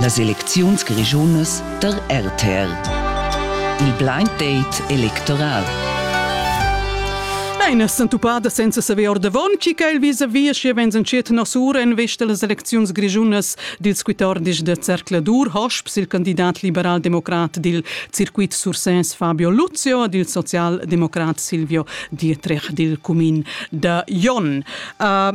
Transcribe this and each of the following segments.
Las elecziuns grischunas da RTR. Il blind date electoral. Nein, es entuppada senza saver ordavon, chi quel vis-a-vis schi vegns entschiet nosura en vesta las elecziuns grischunas dils 14 de Zercladur, hosps il candidat liberal-democrat dil circuit Sursès Fabio Luzio e dil social-democrat Silvio Dietrich dil cumin da Jon. Uh,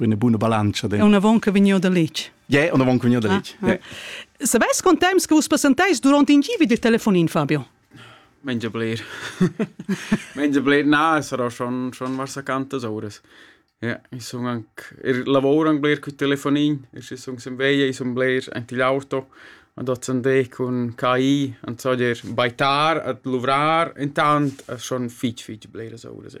Una buona bilancia. È un'avon che vegniu da letg. Yeah, un'avon che vegniu da letg. Ah, ah. Yeah. Sabes quant temps che vus passantais durant in givi del telefonin, Fabio? Menja bler. Menja bler. Na, sarà schon, schon was accantas ores. Ja, ich sun anche, ich lavoro anche bler con telefonin, ich sun sem veia, ich sun bler anche l'auto, und dort sind ich con KI, und so dir, bei tar, at luvrar, intant, es schon fitch, fitch bler so ores. Ja.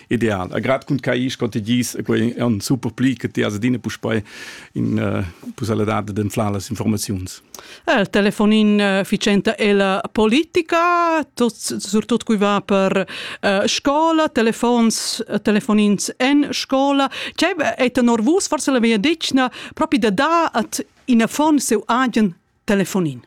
ideal. Grad cun cais co te gis e quei on super pli che ti as adina puspei in uh, pusalidad d'enflar las informaziuns. Il telefonin uh, ficenta è la politica, tot, surtut cui va per uh, scola, telefons, telefonins en scola. C'è è norvus, forse la mia dicna, proprio da da at in affon seu agen telefonin.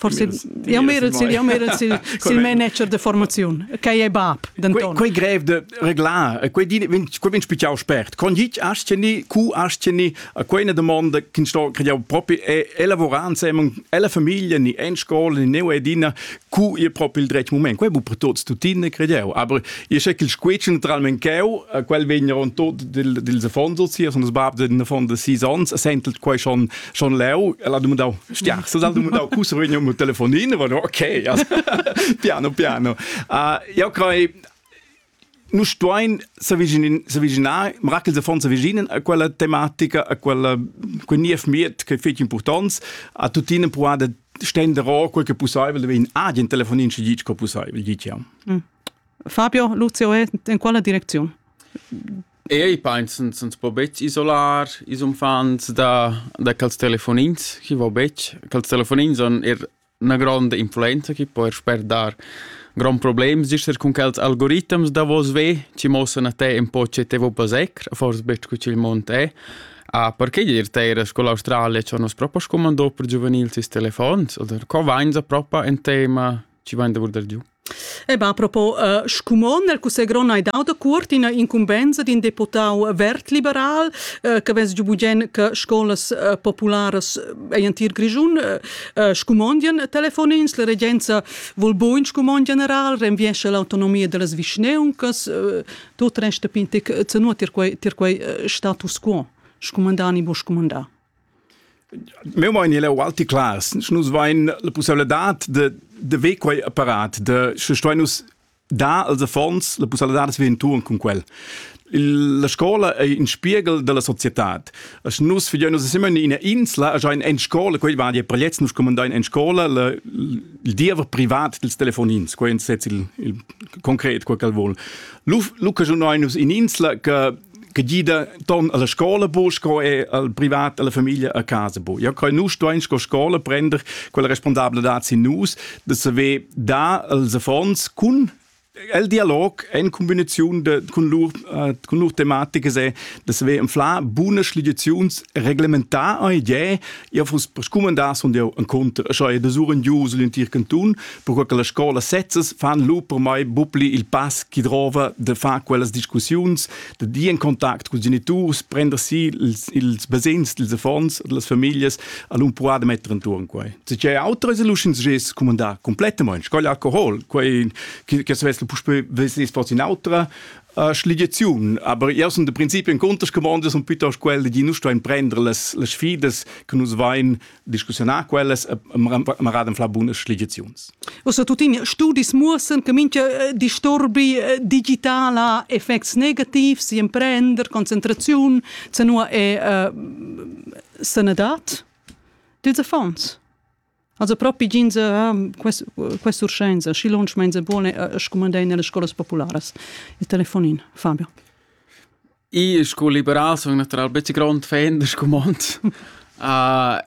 Forse jau merel sil, jau merel sil, sil manager de formaziun, che è bab. Quei, quei grev de reglar, quei di vin, quei vin spigiau spert. Con git asceni, cu asceni, a quei ne domanda che sto crediau propri è elavorare insieme alla famiglia, ni en scuola, ni neu edina, cu è proprio il dretg moment. Quei bu per tuts tutine crediau, aber io so che il squetschen naturalmente cheu, quel vegn ron tot dil dils affonzels hier, sondern das bab den von de six ans, sentelt quei schon schon leu ella dumandau stiar so dal dumandau cu survegni un telefonin va no okay piano piano uh, ja crei nu stuein s'avviginar mirakel se fon s'avviginen a quella tematica a quella quel niev miet che fetg importants a tutine puade stende ro quel che possibel de in agent telefonin ci dic co possibel dic ja mm. Fabio Lucio in quella direczione Eir i painsan s'ns po betg isolar ils uffants da da quels telefonins, chi vo betg. Quels telefonins han eir 'na gronda influenza chi po eir sper dar gronds problems, gist eir cun quels algoritams davos ve chi muossan a te ün po che te vo passer, fors betg co ch'il mond è. A perche dir teir sco l'Australia cha nus propa scumandò per giuvenils ils telefons? Oder co vainsa propa ün tema Ci va in davor del giù? E ba, propo uh, scumon nel cussegl gron hai dau da cuort ina incumbenza d'in deputau vert-liberal uh, che vess giu bugen che scolas uh, popularas ein tir Grischun uh, scumondien telefonins, la regenza vol buin scumon general, renviesce l'autonomia dellas vischneuncas, uh, tot resta pintic, zenuo tir quei, tir quei uh, status quo, scumandan i bo scumandà. meu mein il Walti Klaas nus vein la pussibilitad de de ver quei apparat de sche stoi nus dar als affons la pussibilitad de vir tuon cun quel la scola ei in spiegel della societad as nus fidein nus siamo in ina insla a ein en scola quei va dir prelets nus comandein en scola la, il diever privat dels telefonins quei in sez il, il concret quel quel vol lu lu che nus in insla che che gida ton alla scola bo sco e al privat alla famiglia a casa bo ja kai nu stuein sco scola prender quella responsabla dat sin nus de se ve da als affons kun el dialog en kombination de kun lur uh, kun lur thematik se das we im fla bune schligizions reglementar ei je Io vus scumandar sun eu en conter, scha e de sur in gius l'intir canton, perque che la scola sezzas fan lu per mai bupli il pass chi drova de far quellas discussiuns, de dir in contact cun geniturs, prender si ils, ils basegns dels affons, delles familias, al un puar de metter intorn quai. Se c'è autre es luschins ges scumandar completamente, qual alcohol, quai che se vesse puspei vesse fos in autra, Uh, Schligiaziun, aber io sun de principio in contescomandas und piuttost quelle di nu stuein prender las, las sfidas che nus vain discussionar quellas ma raden fla bunas schligiaziuns. Ossa tutin studis muossen che mincha eh, disturbi eh, digitala effects negativs, imprender, concentraziun, se nu è uh, sanadad? Dils affons? Also propi ginza quest quest urschenza schi lunsch menza buone scumandein alle scolas popularas il telefonin Fabio I sco liberal sono natural becce grond fan del scumond. Uh,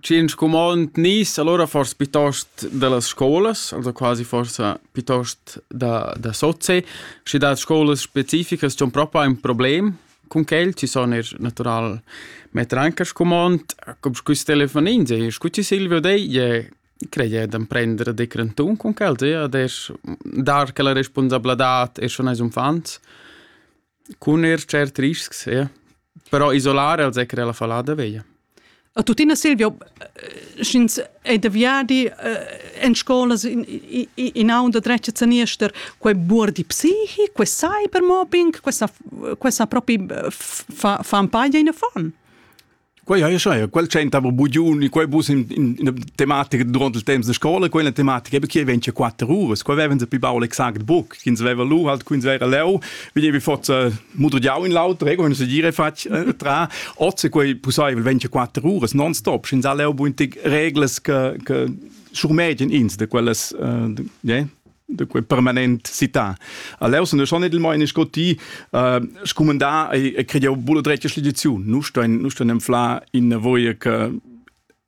Cin scumond nis allora forse piuttost dellas scolas, also quasi forse piuttost da da sozie, schi da scolas specificas c'è un proprio un problem Cun quel ti sun eir natural metter anche a scumond, cum quist telefonin sehe, scu ti Silvio dei, ie creie d'am prender de crantun cun quel, sehe, ad eir dar quella responsabladad eir schon ais uffants, cun eir tschert riscs, sehe, però isolare als he creà la fallada veglia. A tuttina Silvio, eh, sch'ins è da viadi eh, en scolas in, in, in aun da dretg zaniester, quei buor di psichi, quei cybermobbing, questa, questa proprio eh, fa, fa un paio in affon. Quei ha ja quel c'entava bugiuni, quei bus in, in, in tematica durante il temps de scola, quella tematica, perché vence quattro ore, quei avevan se più baul exact buc. ch'ins veva lu halt quins era leu, vedevi forza mudrigiau in l'auter, ego se dire fatg eh, tra ozze quei pusseivel 24 uras non stop, sch'ins ha leu buintig reglas che che schurmegen ins de quellas uh, yeah? de quel permanent città. A leu sun schon edel mein scotti uh, scumandà e e crediau bulla dretga schligiziun. Nu stein nu stein enfla in voie che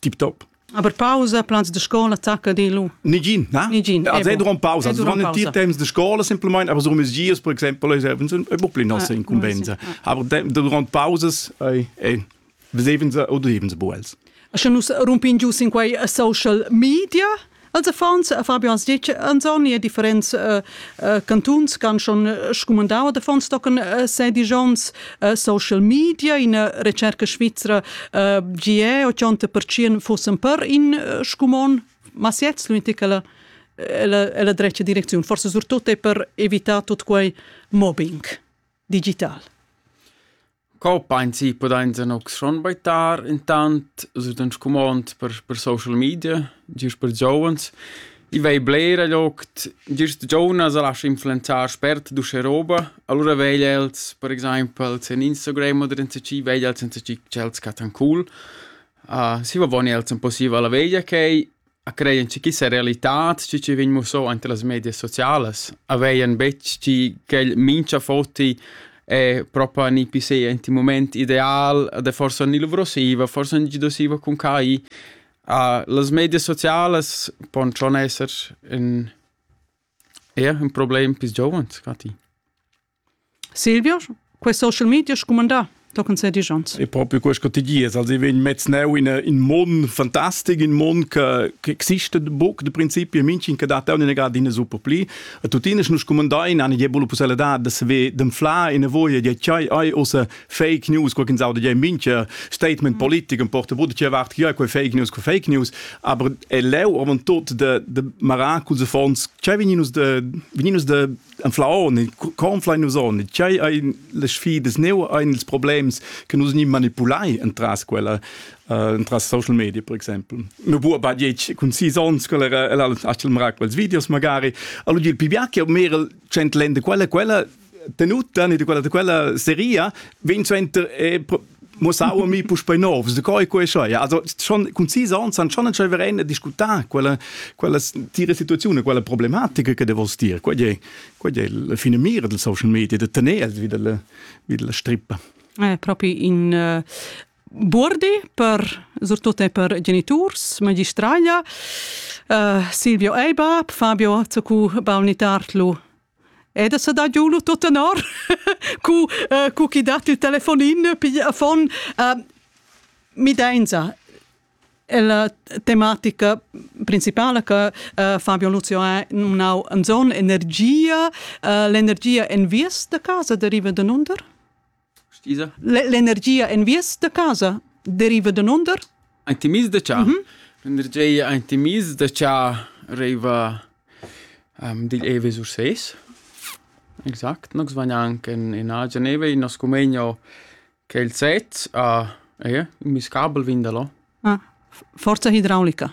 tip top. Aber Pause, plans de scola tacca dillo? Nigin, na? Nigin. Also duran pausa, duran tier temps de scola simplement, aber so mes dias per exempel es ein bo pli nasse incumbenza. Aber durant pausas beseven se oder heben se bo els. Sche nus rumpin giu sin quei social media Als affons, Fabio ans ditg, ans on er differents uh, uh, cantuns ch'han schon scumandau ad affons tochen uh, sedisch onns uh, social media, ina recerca svizra uh, gie 80% fussen per in uh, scumon, ma siets l'unica la la drecha direcziun, forse surtut è per evitare tutto quei mobbing digital. Co painsi pudainsa nu schon baitar intant, sut ün scumond per per social media, gist per giovens. I vei blera gliocht, gist giuvnas a lascha influenzar spert d'uschè roba, alura vegl els, per exaimpel, sen Instagram oder insacì, vegl els insacì ch'els chattan cool. Uh, si va boni els ün po siva la veglia ch'ei, A creien che quista realitad, schi chi vegn mussò ante las medias socialas, aveien betg chi quel mincha foti è propa ni pi se int in mument ideal, ed è forsa ni luvrosiva, forsa ni giudosiva cun quai. Uh, las medias socialas pon schon esser ün, eir ün problem pis giovens, ca ti? Silvio, questo social media scumandà tochen se dijans. E proprio questo ti dies, also wenn mezz neu in in mon fantastic, in mon che che existe buc de principio minchen che dat una grad in super pli. A tutina nus comandai in eine jebolo possibilità dass we dem fla in voie de chai ai osa fake news qualche saude de mincher statement politik und porte wurde che wart hier quei fake news quei fake news, aber e leu avantot de de maracus fons, cioè vininus de vininus de Anflaon il conflein nus on tgei ein las sfidas neu ein ils problems che nus ni manipulai entras quella uh, entras social media per exempel no bu ba diec cun sis ons quella era ella achel mara quels videos magari allora il pibia che mer cent lende quella quella tenuta ni quella de quella seria vin center e mo sa mi puspei novs de coi quei scho ja also schon concisa on san schon entschei verein discutar quella quella dire situazione quella problematica che de vos dir quei è quei è la fine mira del social media de tener vi della vi della strippa eh, proprio in uh, Burdi per soprattutto per genitors, magistraglia, uh, Silvio Eibab, Fabio Zacu Balnitartlu E da sa dà giù lu tut tenor cu uh, cu chi dat il telefonin piglia fon uh, midenza la tematica principala che uh, Fabio Luzio ha nau en zon energia uh, l'energia en vies da casa deriva da nunder? L'energia en vies da casa deriva da nunder? Ein ti mis da cha. Mm -hmm. L'energia ein ti mis da cha arriva um, digl Ewe sur ses. Exact, nos van anche in, in agen Ewe, in nos cumegno che il set a uh, eh, mis kabel vindalo. Ah, forza idraulica.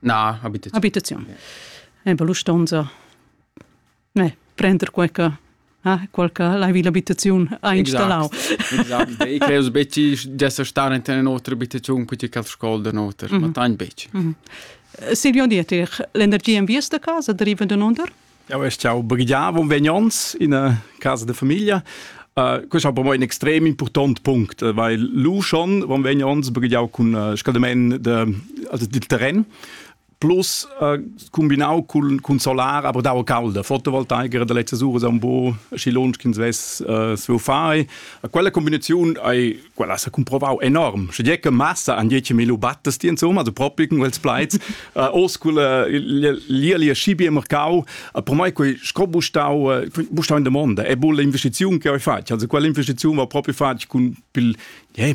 Na, habitaziun. Habitaziun. Yeah. Eh, per l'ustonza eh, prender qualche ah, qualche l'hai l'abitaziun ha installau. Exact. Ich glaube, Betty dessa star in eine otra abitazion con qualche scuola da noter, ma tan Betty. Silvio Dietrich, l'energia in via da casa deriva da nunder? Jau es jau briglià von vegnons in casa de famiglia. Uh, questo è per me un extrem important punct, weil lu schon von vegnons brigliau con uh, scaldament de, also del terrain plus uh, combinau cun, cun solar aber dau calda fotovoltaica da letzte sura un po scilon che ins vess uh, fare a quella combinazione hai quella sa cumprovau enorm sche che massa an dieci mil battes ti insomma so propi con quels plaits uh, o scula lia schibie mercau uh, per mai quei sco bustau uh, bustau in domanda e bu l'investiziun che ho fatg also quell'investiziun va proprio fatg con pil yeah,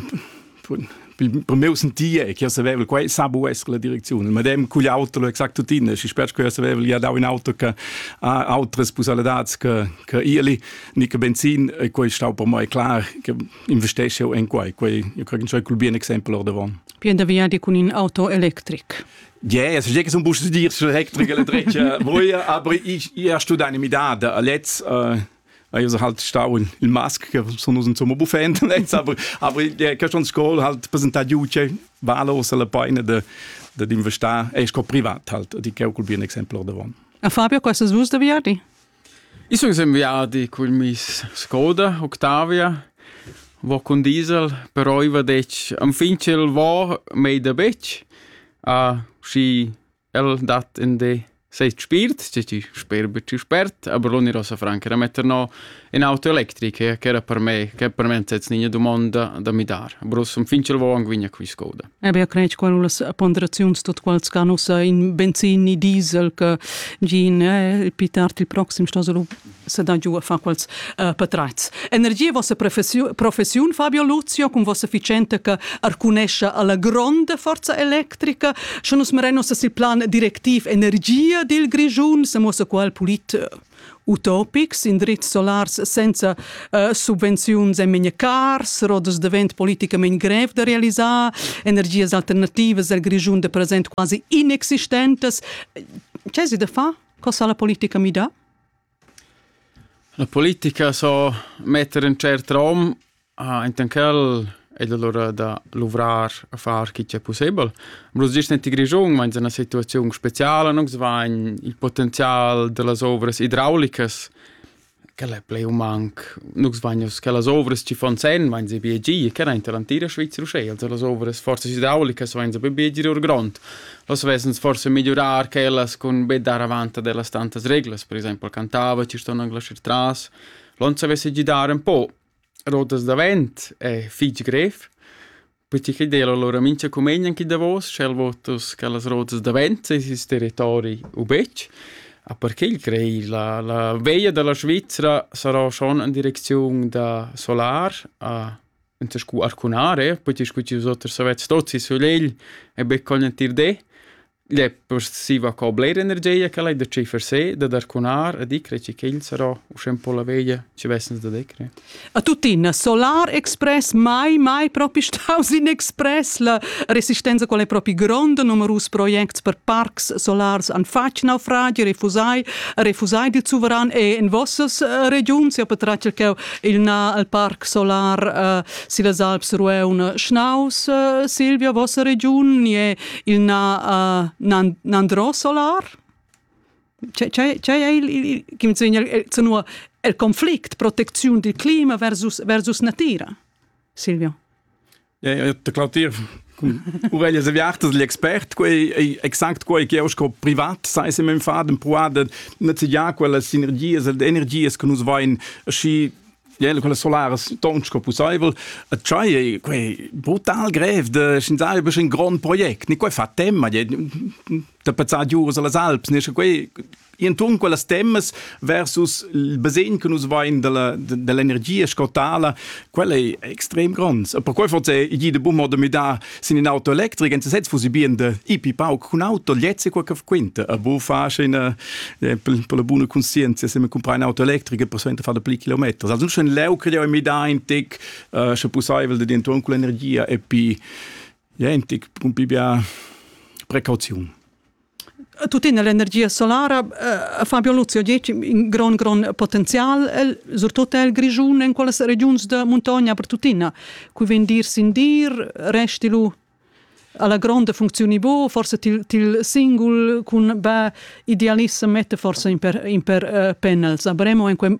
per meu sentie che savevel quei sabu es la direczione ma dem cugl auto exact tutine si spetg che savevel ja dau in auto che ha autres pusalidats che che ili ni che benzin e quei stau per mai klar che investesce en quai, quai io credo che col bien exempel ordavon. Bien da viadi cun in auto electric. Yeah, es je che sun bus dir sur electric electric. Voi aber ich ja studare midada a letz uh, Io so halt stau in il mask che sono un insomma buffent letz, aber aber der Keston School halt presentati uce valos alla paina de de d'investare e sco privat halt, di che col bien exempel ordavon. A Fabio, questo svus da viadi? I sun ün viadi cul miss Skoda Octavia, vo cun diesel, però i va detg enfin ch'el vo mei da betg, schi el dat ün di set spiert, schi chi sper be tü spert, aber l'unira sa franca da metter no ün auto electric ch'era per me, ch'era per me ün sez gnigna dumonda da mi dar, aber uss enfin ch'el vo anc vegn a quist Skoda. Ebia crensch qual las ponderaziuns tot quals can ussa in benzin ni diesel che gin eh, il tard il proxim sto lu se da giu a fa quals uh, patreits. Energia vossa professiun, professiun Fabio Luzio con vossa efficiente che arcunescia alla gronda forza electrica schon us merenos sil plan directiv energia dil Grigiun se mossa qual pulit utopics, indrizs solars senza uh, subvenziuns en memia cars, rodas de vent politicamente grev de realizar, energias alternativas al Grischun de present quasi inexistentes. Ce si de fa? Cosa la politica mi da? La politica so mettere in certo rom Intan ch'el ed alura da luvrar a far chi ch'è pussebel. Am rust gist gnanca Grischun, ma ins è 'na situaziun speziala. Nus vain il potenzial da las ovras idraulicas, quel è plü u manc. Nus vain uss quellas ovras chi fan sen, vain se bgir. Quel aint l'antira Svizra uschè. Also las ovras forzas idraulicas vain se be bgir or grond. Las vessens forsa migliurar quellas cun be dar avant ad ellas tantas reglas. Per exaimpel cantava, chi ston anglais ir tras. Lon savess gidar ün po, Rotas davent è fich grev, perche chi d'eira lura mincha cumegn chi davos, sch'el vot uss quellas rotas davent seis ins territori u betg. A per ch'el crei la la veia da la Svizra sarà schon in direcziun da solar a enta scu arcunare, perche scu tü hoz oters savets, tots i sulegl e be col entir di. Gliè possessiva co bler energia ch'el hai da tschiffer se, da darcunar e dicre chi ch'el sarà uschè un po la veglia chi vessens da decre. A tuttina, Solar Express mai mai propi staus in express la resistenza qual è propi gronda numerus projects per parcs solars an fatg naufragi refusai refusai dil suveran e in vossas uh, regiuns ja per tratg cheu il na al parc solar uh, si las Alps rueun schnaus uh, Silvia vossa regiun ni è il na, uh, nandro solar c'è il, il, il, il, il conflict protezione del clima versus, versus natura Silvio Claudir Uvel es aviartas l'expert quei exact quei che sco privat sai se men fa den puada netziar quella sinergias ed energias che nus vain aschi quella solaras ton sco pusseivel a tschai quei brutal grev de schinzai besch in grond project ni quei fa temma da pezzar giuras alla alps ne sche quei inton quellas temmas versus il basegn che nus vein dell'energia scotala quella è extrem gronds e per quei forse è de bummo de midar Sin in auto electric en sesez fusi bien de ipi pauc cun auto lezze qua che quinta a bu fa scena per la buona conscienza se me comprar un auto electrico per sovente fare pli chilometri also schon leu creo mi da in tic sche possibel de intorno con l'energia e pi ja en tic un pi bia precauziun tuttina l'energia solara eh, Fabio Luzio dice in gran gran potenzial el, surtut el Grischun in quelle regions de montagna per tuttina cui ven dir sin dir resti lu alla grande funzioni bo forse til, til singul cun ba idealissem mette forse in per, in per uh, eh, panels avremo in quel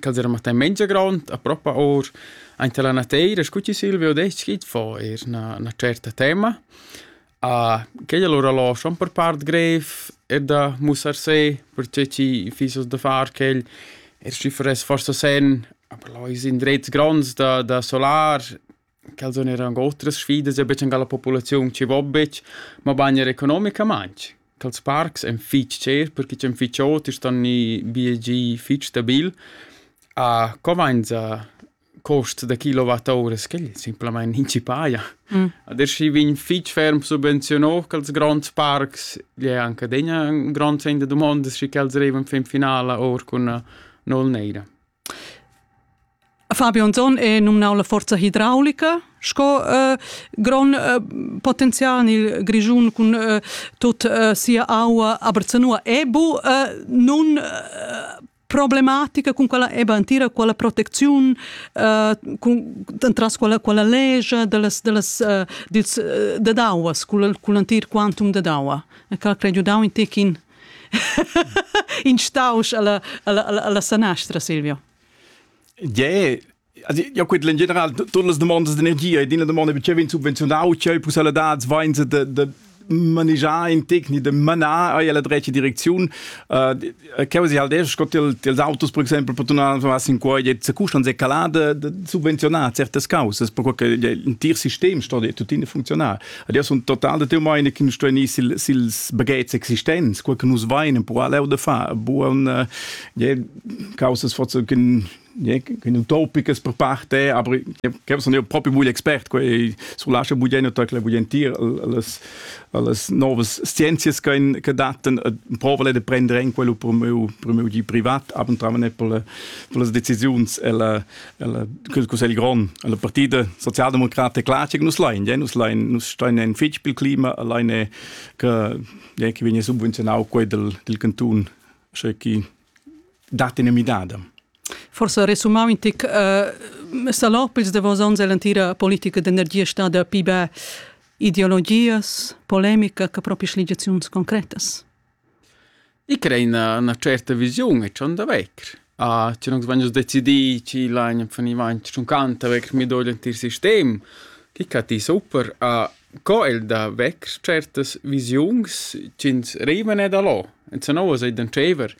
Quels eran martai mengia grond, apropa our aint alla nateira, scu chi Silvio ha detg, schi fo eir 'na 'na tscherta tema. quei alura lò schon per part greiv er da mussar se, perche chi fiss hoz da far quel. Er schi faress forsa sen, aber lò ais indrets gronds da da solar. Quels sun eir ancò otras sfidas e betg ün cha la populaziun chi vo betg, mabain eir economicamaing. Quels parcs èn fich cher perche ch'en fich ot e ston gnir biegì fich stabil. A co vainsa cost da kilowattouras? Quel simplamaing nin chi paja. Adesch schi vegn fich ferm subvenziunà quels gronds parcs. Igl è anche adegna ün grond segn da dumondas schi ch'els arrivan fin finala our cun nol neira. Fabio Anzon è nominau la forza hidraulica sco äh, grond äh, potenzial nel Grischun cun äh, tut äh, sia aua, aber zanua è bu äh, nun äh, problematica con quella eba antira quella protezione uh, con tras quella quella legge delles delles uh, dils uh, de dauas con con antir quantum de daua e cal credo dau in tekin in stausch alla, alla, alla, alla sanastra, Silvio. Yeah, also ja gut in general todas las demandas d'energia e din la domanda che vegn subvenzionau c'è il possibilidad vain de, de manegiar in tecnic de manar a la drecha direcziun uh, che vos adesso scott ils autos per esempio per tornare was in qua jetzt custan se calada de subvenzionar certe causes per che il tir sistem sto tuttina funzionar Ed io sun total da teu meine che nus stuain ir sil, sils bagets existents, quel che nus vain, però leu da far buon äh, je, causas forse che che utopiches per parte, aber che sono io proprio voglio expert, quei sul lascia buglieno tacla voglientir alles alles novas scienzias che che datten e provale de prendere in quello per meu per meu di privat, aber tramen per le, per le decisiuns e la il cussegl grond la partida socialdemocrata è clar che nus lain nus lain nus stein en fitg bil clima alleine che che viene subvenzionau quei del del canton sche chi dat in midada Forse resumau in tic uh, salopils de vos onns l'entira politica d'energia stada pibe ideologias polemica che proprio sligiazions concretas I crea üna üna certa visiun e dschond da vegr. Ah schi nus vegn uss decidì chi lagn funivant ch'ün canta vegr midò l'entir sistem. Chi cati super. Co el da vegr tschertas visiuns chi'ns rivan e da là. Enzanova sai dentscheiver.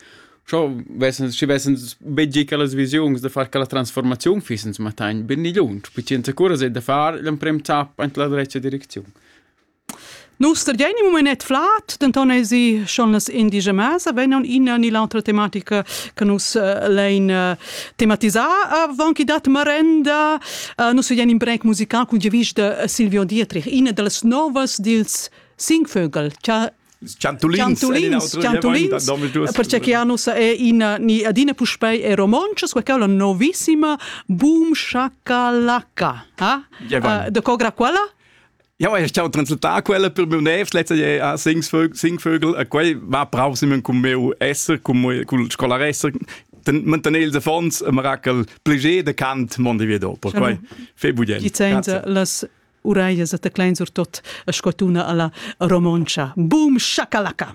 Scho vessans schi vessans be gi quellas visiuns da far quella transformaziun fiss ins mattagn be ni lunsch, pi chi ins accura sai da far l'emprem zapp aint la drecha direcziun. Nus studein im moment flat, denton esi schon las indigemas vegnan ina ni l'autra tematica che nus uh, lein uh, tematisar avon che dat marenda. Uh, nus studein in break musical cun giavisch de Silvio Dietrich, ina dallas novas dils Singvögel, che Ciantulins, ciantulins, ciantulins perché che anus è in ni adina puspei è romoncia, sua quella novissima Boom Shakalaka. Ha? Uh, de cogra quella? Ja, ich habe translatar quella per meu nefs letzte je a Singvögel, Singvögel e quei va brav si men cum meu esser, cum cul scolar esser, mantener ils affons e mirakel plaisir de cant mondi via dopo. Quei fe budien. Gi zainza las uraias e teclein sur tot a scotuna alla romoncia. Boom shakalaka.